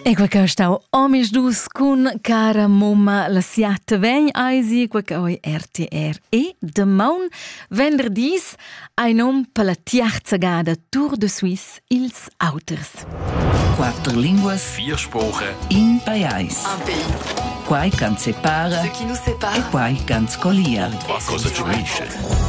E quei che stau omis dus cun cara mumma la siat vegn eisi quei che oi RTR e demaun venderdis ein um per la tiarza gada Tour de Suisse ils auters. Quatter linguas, vier Sprache, in pajais. Un pays. Quai can separa ce qui nous sépare. e quai can scolia. Etwa cosa ci unisce.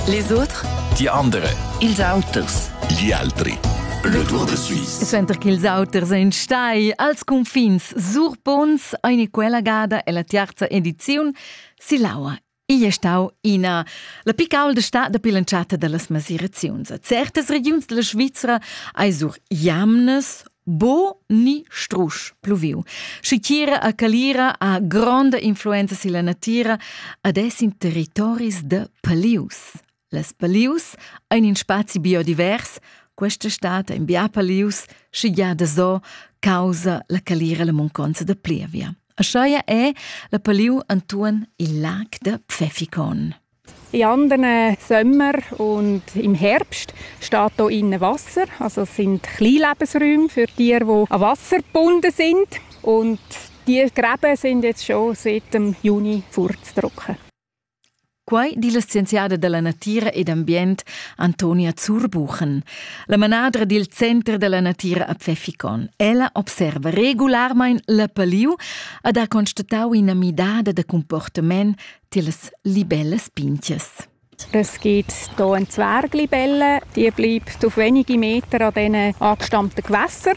Les autres, Die andere, ils auters. Gli altri. Le Tour de Suisse. Suenter ch'ils auters ein stai als confins Surpons, eine quella gada ella tiarza ediziun silaua Igl è stau ina la picaulda sta da bilanzata dallas masiraziuns. A certas regiuns della Svizra ei sur jamnes bo ni strusch pluviu. Schitiera a Calira ha gronda influenza silla natira ad es in territoris de palius. Les palius ein in spazi biodivers, questa stad ein bia palius, sche gia da zo, causa la calira la munconza da plievia. Ascheia è la paliu Antuon il lag da Pfeffikon. In anderen Sommer und im Herbst steht hier innen Wasser. Also es sind Kleinlebensräume für Tiere, die an Wasser gebunden sind. Und die Gräben sind jetzt schon seit dem Juni vorzutrocken. Quai di la scienziada da la natira ed ambient Antonia Zurbuchen, la manadra dil Center dalla natira a Pfeffikon. Ella observa regularmein la paliu ad ha constatau ina midada da comportament tilas libellas pintias. Es gibt hier einen Zwerglibelle, die bleibt auf wenige Meter an diesen abgestammten Gewässern.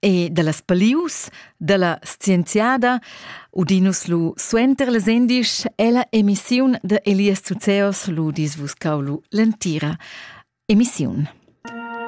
e dallas palius dalla scienziada udinus lu suenter las endisch ella emissiun de Elias Zuzeos lu dis vus cau lu l'entira emissiun.